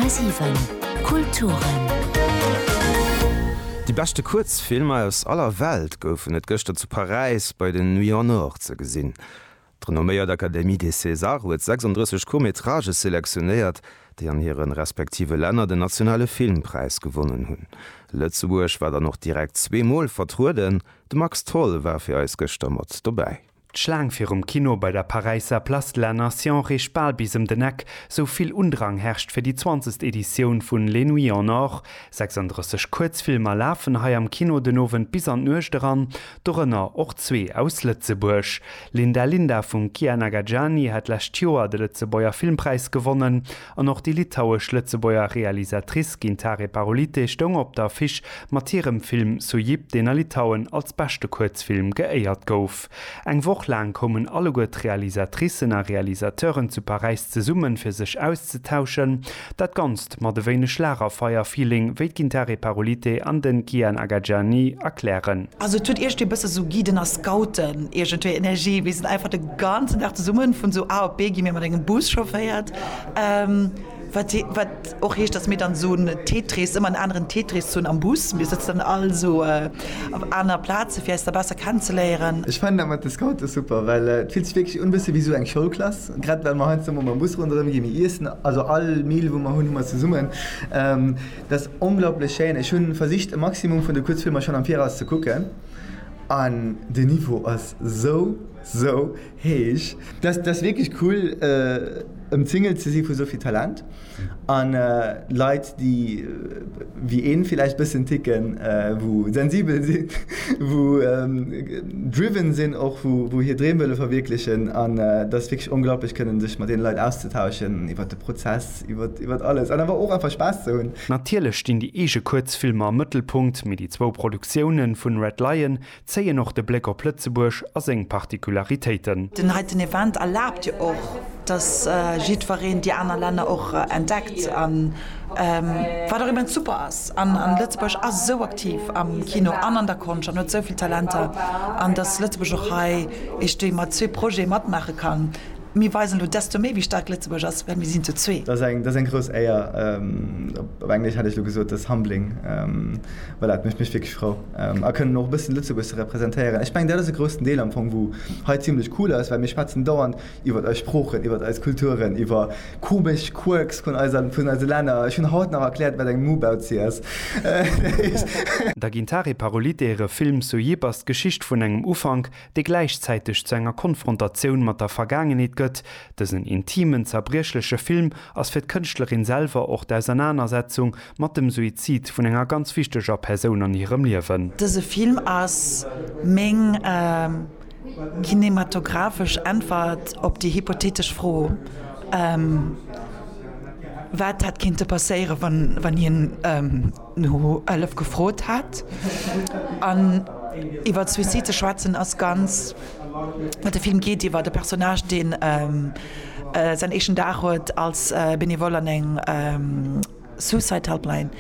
10,7 Kulturen. Déi beschte Kuerzfilmer aus aller Welt goufen et gëschter zu Paräis bei den Nuits en Or ze gesinn. D'renomméiert Académie des Césars huet 36 Court-métrages selektionéiert, déi an hire respektive Länner den nationale Filmpräis gewonnen hunn. Lëtzebuerg war dann och direkt zwee Mol vertrueden, de Max Tholl war fir eis gëschter mat dobäi. D'Schlaang virum Kino bei der Paräisser Place de la Nation reecht bal bis ëm den Eck, sou vill Undrang herrscht fir déi zwanzegst Editioun vun Les Nuits en Or. 36 Kuerzfilmer lafen hei am Kino den Owend bis an d'Nuecht eran, dorënner och zwee aus Lëtzebuerg. Linda Linda vum Kiah Nagagiani hat d'lescht Joer de Lëtzebuerger Filmpräis gewonnen. An och déi litauesch-lëtzebuerger Realisatrice Gintarė Parulytė stoung op der Affiche mat hirem Film Sujyb, deen a Litauen als beschte Kuerzfilm geéiert gouf. Eng Woch laang koumen alleguer d'Realisatricen a Realisateuren zu Paräis zesummen, fir sech auszetauschen. Dat Ganzt mat e wéineg Lagerfeier-Feeling, wéi d'Gintarė Parulytė an de Kian Agajani erklären. Also et huet iergendwéi e bësse sou Guiden a Scouten iergendwéi Energie. Mir sinn einfach de ganzen Dag zesummen, vun sou A op B gi mir mat engem Bus chaufféiert, Wat wat och heescht, datt mir dann esou en Tetris, ëmmer en aneren Tetris hunn am Bus. Mir sëtzen dann all esou op aner Plaze fir eis da besser kennenzeléieren. Ech fannen dat mat de Scoute super, well et fillt sech wierklech un bësse wéi esou eng Schoulklass. Grad well mer heiansdo mol mam Bus ronderëm ginn, mir iessen also all Meal wou mer hunn, hu mer zesummen. Dat ass onglaublech schéin. Ech hunn versicht e Maximum vun de Kuerzfilmer schonn am Viraus ze kucken an de Niveau ass sou sou. Heesch. Dat ass wierklech cool ëmzingelt ze si vu souvill Talent an Leit déi wéi een villäicht bëssen ticken, wou sensibel sinn, wou driven sinn och, wou hir Dreem wëlle verwierklechen an dat ass wierklech onglaublech kënnen sech mat deene Leit auszetauschen iwwert de Prozess, iwwert alles an awer och einfach Spaass ze hunn. Natierlech stinn déi eege Kuerzfilmer am Mëttelpunkt, mee déi zwou Produktioune vun Red Lion Zéien och de Bléck op Lëtzebuerg a seng Particularitéiten. Den heiten Event erlaabt jo och, dass jiddwereen déi aner Länner och entdeckt, wat och immens super ass. An Lëtzebuerg ass esou aktiv am Kino an an der Konscht an huet souvill Talenter, an dass Lëtzebuerg och hei eesch déi mat zwee Projete matmaache kann, Mir weisen elo desto méi, wéi staark Lëtzebuerg ass, well mir sinn zu zwee. Dat ass eng grouss Éier. Op Englesch hätt ech elo gesot, dat ass humbling. Voilà, et mécht mech wierklech frou a kënnen och e bëssen Lëtzebuerg ze representéieren. Ech mengen, dat ass e groussen Deel am Fong, wou hei zimlech cool ass, well mir schwätzen dauernd iwwert eis Sproochen, iwwert eis Kulturen, iwwer komesch Quirks vun eise Länner. Ech hunn haut nach erkläert, wat eng Mubauzi ass. Da ginn d'Hari Parolite hire Film Sojib ass d'Geschicht vun engem Ufank, dee gläichzäiteg zu enger Konfrontatioun mat der Vergaangenheet gëtt. Dësen intimen, zerbriechleche Film ass fir d'Kënschtlerin selwer och d'Ausernanersetzung mat dem Suizid vun enger ganz wichteger Persoun an hirem Liewen. Dëse Film ass meng kinematographesch Äntwert op déi hypothetesch Fro, wat hätt kinnte passéieren, wann hien. No Hëllef gefrot hat. An iwwer Suicide ze schwätzen ass ganz, de Film geet iwwer e Personnage, deen säin éischten Dag huet als Benevole an eng Suicide Helpline.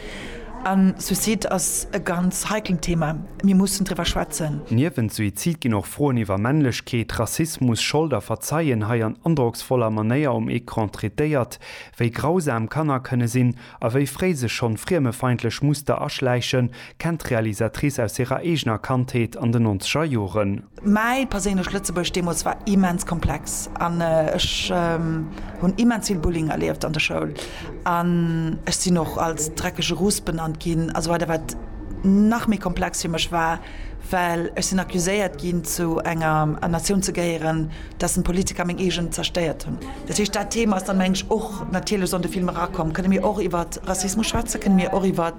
A Suicide ass e ganz heiklen Thema, mir mussen driwwer schwätzen. Niewent Suizid ginn och Froen iwwer Männlechkeet, Rassismus, Schold a Verzeien hei an androcksvoller Manéier um Ecran traitéiert. Wéi grausam Kanner kënne sinn, A wéi fréi sech schonn friemefeindlech Muster aschläichen, kennt d'Realisatrice aus hirer eegener Kandheet an den nonzeger Joren. Mäi perséinlecht Lëtzebuerg deemools war immens komplex an ech hunn immens vill Bullying erlieft an der Schoul an ech sinn och als dreckege Russ benannt ginn a sou weider, wat nach méi komplex fir mech war. Well ech sinn accuséiert ginn, zu enger Natioun ze gehéieren, dessen Politiker meng eegen zerstéiert hunn. Dat heescht, dat Thema ass dann, mengen ech, och natierlech an de Film erakomm. Kënne mir och iwwer Rassismus schwätzen? Kënne mir och iwwer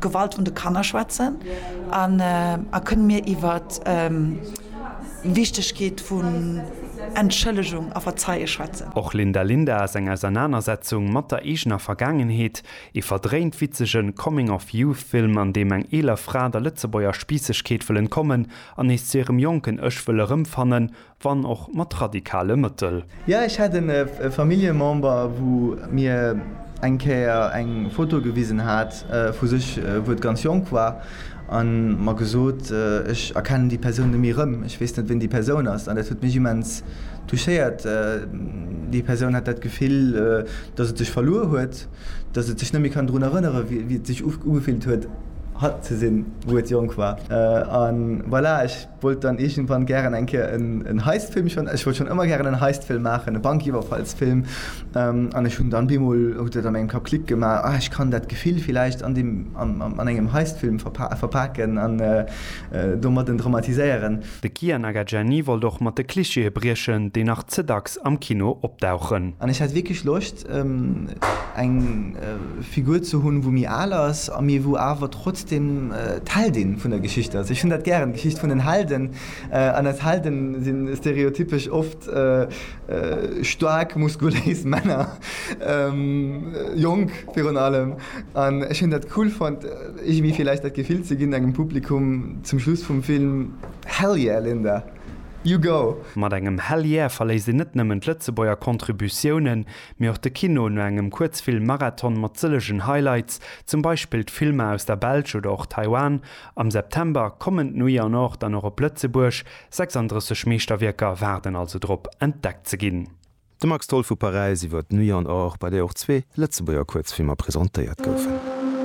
Gewalt un de Kanner schwätzen? A kënne mir iwwer d'Wichtegkeet vun Entschëllegung a Verzeie schwätzen? Och Linda Linda ass eng Ausernanersetzung mat der eegener Vergaangenheet. Ee verdréint witzegen Coming of Youth Film an deem eng eeler Fra der Lëtzebuerger Spiissegkeet wëll entkommen an nees zu hirem jonken Ech wëll erëmfannen, wann och mat radikale Mëttel. Jo ech hat en Familljemember wou mir eng Kéier eng Foto gewisen hat vu sech wou et ganz jonk war an mer gesot, ech erkennen déi Persoun nemmi erëm, ech weess net ween déi Persoun ass an dat huet mech immens touchéiert. Déi Persoun hat dat Gefill dass et sech verluer huet. Dass et sech net méi kann drun erënneren, wéi et sech ugefillt huet, hatt ze sinn, wou et jonk war. A voilà, ech wollt dann iergendwann gären eng Kéier en Heist-Film, ech wollt schonn ëmmer gären en Heist-Film maachen, e Bankiwwerfalls-Film. An ech hunn dann bemol, huet et an mengem Kapp Klick gemaach, Ah, ech kann dat Gefill villäicht an deem, an engem Heist-Film verpaken an domat en dramatiséieren. De Kia Nagajani wollt och mat de Clichéë briechen, déi nach ze dacks am Kino opdauchen. An ech hat wierklech Loscht, eng Figur ze hunn, wou méi al ass, a mee wou awer trotzdem d'Heldin vun der Geschicht ass. Ech hunn dat gären, d'Geschicht vun den Helden. An eis Helde si stereotypesch oft staark, muskuléis Männer, jonk virun allem. An ech hunn dat cool fonnt, iergendwéi vläicht dat Gefill ze ginn engem Publikum zum Schluss vum Film, Hell yeah, Linda! You go! Mat engem Hell Yeah verléisst een net nëmmen d'Lëtzebuerger Contributiounen, mee och de Kino no engem Kuerzfilm-Marathon mat sëllegen Highlights, zum Beispill d'Filmer aus der Belsch oder och Taiwan. Am September kommen d'Nuit en Or dann och op Lëtzebuerg, 36 Meeschterwierker waarden also drop, entdeckt ze ginn. De Max Tholl vu Paräis iwwer d'Nuit en Or, bei där och zwee Lëtzebuerger Kuerzfilmer presentéiert goufen.